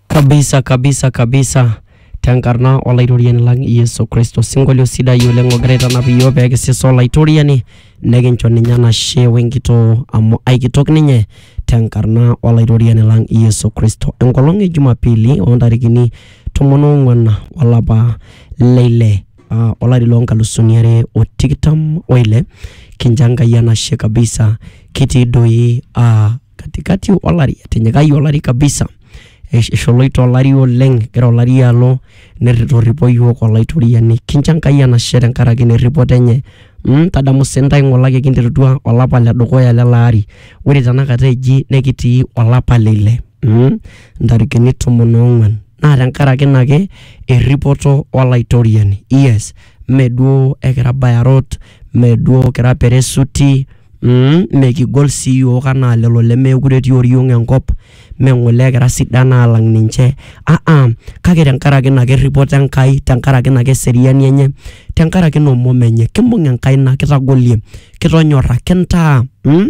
kabisa kabisa kabisa tenkarna olaitoriani lang yesu kristo sinkolio sidai oleng ogira aitanap iyiook pee kisisa olaitoriani nekincho ninye enashe wenkitoo amu aikitok ninye tenkarna olaitoriani lang yesu kristo enkolong e jumapili oontarikini tomon oong'uan olapa leile ah, olari loonkalusuni are o tikitam oile kincho enkai enashe kabisa kitii doi ah, katikati olari etinyikayie olari kabisa esh- esholoito olari oleng egira olari alo nerri- torripo iyiook olaitoriani kincho enkai enashe tenkaraki ina erripoto enye mm, tadamu sii intae ng'olaki kinterutua olapa ledukuya lele ari ore tenakata eji nekitii olapa le ile mm, intarikini tomon ong'uan naa tenkaraki ina ake erripoto olaitoriani yes meduo ekira bayarot meduo kira peresuti. Umm mekigol sii iyiook anaa lelo lemeekure etii oriong enkop, mme ng'ole kira sidan aalang ninche aa-a kake tenkaraki ina kirripoto Enkai, tenkaraki ina keseriani enye, tenkaraki ina omom enye. Kimbung enkaina kitagolie, kitonyorra, kintaa umm.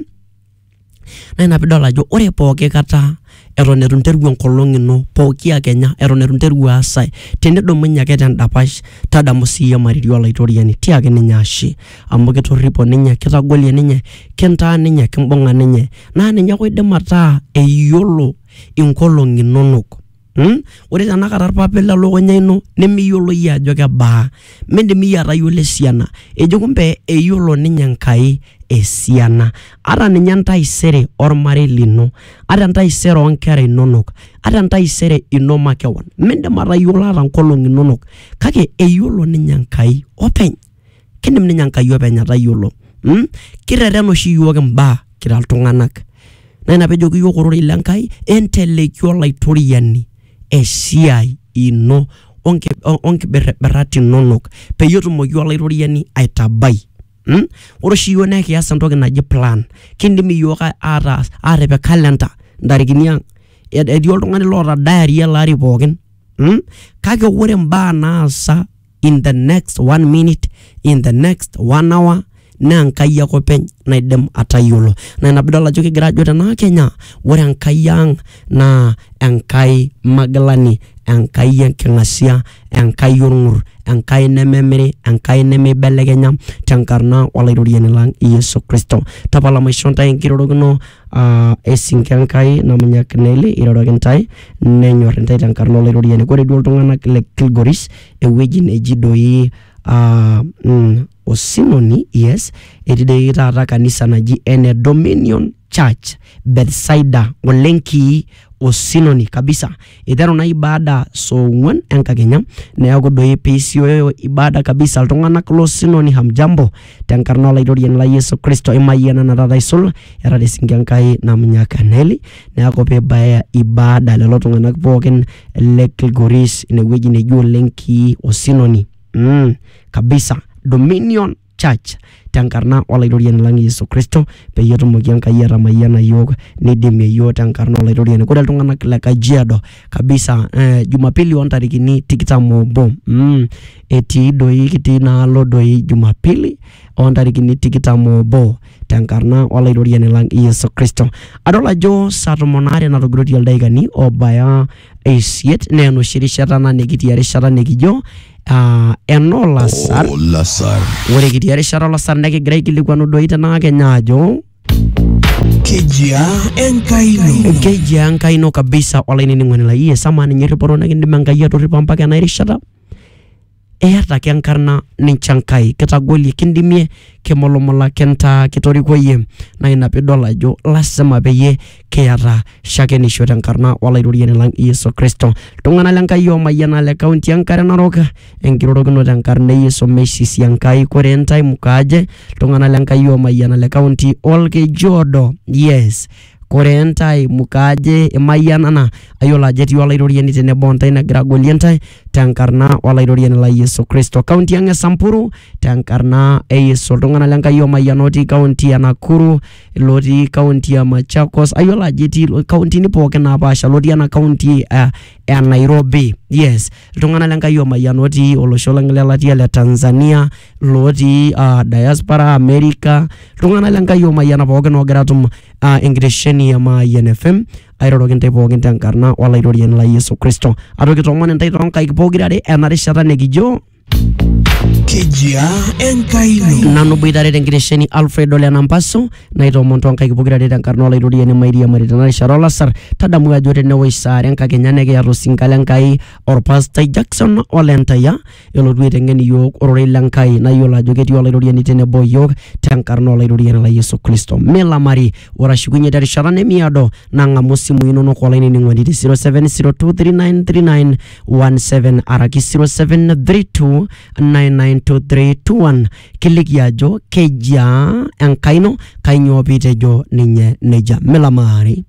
Naa ina pee idol ajo ore pooki kata eton eitu interru enkolong ino pooki akenya eton eitu interru aas ae tinidumunye ake tendapash tadamu siiyie mariri olaitoriani tiaki ninye ashe amu kitorripo ninye kitagolie ninye kintaa ninye kimbung'a ninye naa ninye ake oidim ataa eyiolo inkolong'i inonok mm? ore tenakata irpapit lelukunya ino nemiyiolo iyie ajo kebaa mindim iyie atayiolo esiana ejo kumbe eyiolo ninye Enkai esiana ata ninye entaisere ormarei lino ata entaisere oonkera inonok ata entaisere ino makewon mindim atayiolo ata nkolong'i inonok kake eyiolo ninye Enkai openy kindim ninye Enkai openy atayiolo mm? kirrerren oshi iyiook imbaa kira iltung'anak naa ina pejoki iyiook ororei le Enkai enteleiki olaitoriani esiai ino onkibirribirat inonok peyie etumoki olaitoriani aitabai mm? ore oshi iyiok naa kias entoki naji plan kindim iyiok a- ataas atipik calendar intarikini ang Et- etii oltung'ani loota diary ele ari pookin mm? kake ore imbaa naasa in the next one minute in the next one hour naa enkai ake openy naidim atayiolo naa ina pidol ajo kigira ajo tenaa kenya ore enkai ang naa enkai magilani enkai enking'asia enkai orng'ur enkai nememiri enkai nemeibelekenya tenkarna olaitoriani lang yesu kristo tapala maishoo ntae enkirorokino uh, esinke Enkai namunyak Neli iroroki intae nenyor intae tenkarna olairoriani kore duo iltung'anak le Kilgoris ewueji neji doi uh, mm, osinoni yes etii doi taata kanisa naji ene Dominion Church Bethsaida olenkii osinoni kabisa. Eiteru naa ibada saa ong'uan enkakenya neaku doi peisioyo ibada kabisa iltung'anak lo sinoni hamjambo tenkarna olaitoriani lai Yesu Kristo imayianana taata aisul era te sinki Enkai Namunyak Neli neaku peibaya ibada lelo tung'anak pookin le Kilgoris inewueji neji oleng kii osinoni mm, kabisa dominion church tenkarna olaitoriani lang Yesu Kristo peyie etumoki Enkai atamayiana iyiook neidimie iyiook tenkarna olaitoriani. Ore iltung'anak le Kajiado kabisa eh, Jumapili ontarikini tikitam obo mm, etii doi kitii inaalo doi Jumapili ontarikini tikitam obo tenkarna olaitoriani lang Yesu Kristo. Adol ajo saa tomon aare natogiroitie ildaikani obaya isiet naa enoshi rishata ena nikitii erishata nikijo uh, enoo lasar Olasar. ore kitii erishata olasar nekigira aikilikuanu doi tenaa kenya ajo Kejia Enkai ino. keji enkai ino kabisa olainining'oni lai iye sama ninye irripoto nikindim enkai atorripo mpaka ena erishata Iyata ake enkarna nincho Enkai, kitagolie, kindimie, kimulumula, kintaa, kitoriko iyie. Naa ina piidol ajo lazima peyie kiyata shakenisho tenkarna Olaitoriani lang Yesu Kristo. Iltung'anak le Nkai oomayiana le kaunti e Nkare Narok, enkirorokinoto enkarna e Yesu meisisi Enkai. Koree intae, mukaaje? Iltung'anak le Nkai oomayiana le kaunti o Olkeju Odo, yes. Koree intae mukaajo imayianana ayiolo ajo etii Olaitoriani tenebo o ntae negira agolie intae tenkarna Olaitoriani lai Yesu Kristo. Kaunti ang e Samburu tenkarna e Yesu. Iltung'ana le Nkai oomayiana otii kaunti e Nakuru, ilootii kaunti e Machakos, ayiolo ajo etii kauntini pooki napaasha, lotii ena kaunti e Nairobi, yes. Iltung'ana le Nkai oomayiana otii olosho lang le latia le Tanzania. lotii uh, diaspora america iltung'anak le nkai omayiana pookin oogira atum uh, enkitesheni e mayian fm airoroki intae pookin tenkarna olaitoriani lai yesu kristo atoki tomon intae toonkaik pokirare ena rishata nikijo kejia enkai ino nanu boitare tenkitesheni alfred ole nampaso naitomon toonkaik pokirare tenkarna olaitoriani mairiamari tena rishata olasar tadamu ajo tenewoi saare enkakenya nekiata osinka le nkai orpastai jackson olentaya elotu aiteng'en iyiook ororei le Nkai nayiolo ajo ketii olairoriani tenebo o iyiook tenkarna olairoriani lai Yesu Kristo. Milamari, ore ashukunye terishata nemiado nang'amu isimui inonok olainining'oni te 0702393917 araki 0732992321 kiliki ajo kejia Enkai ino, kainyoo piitejo ninye nejia. Milamari.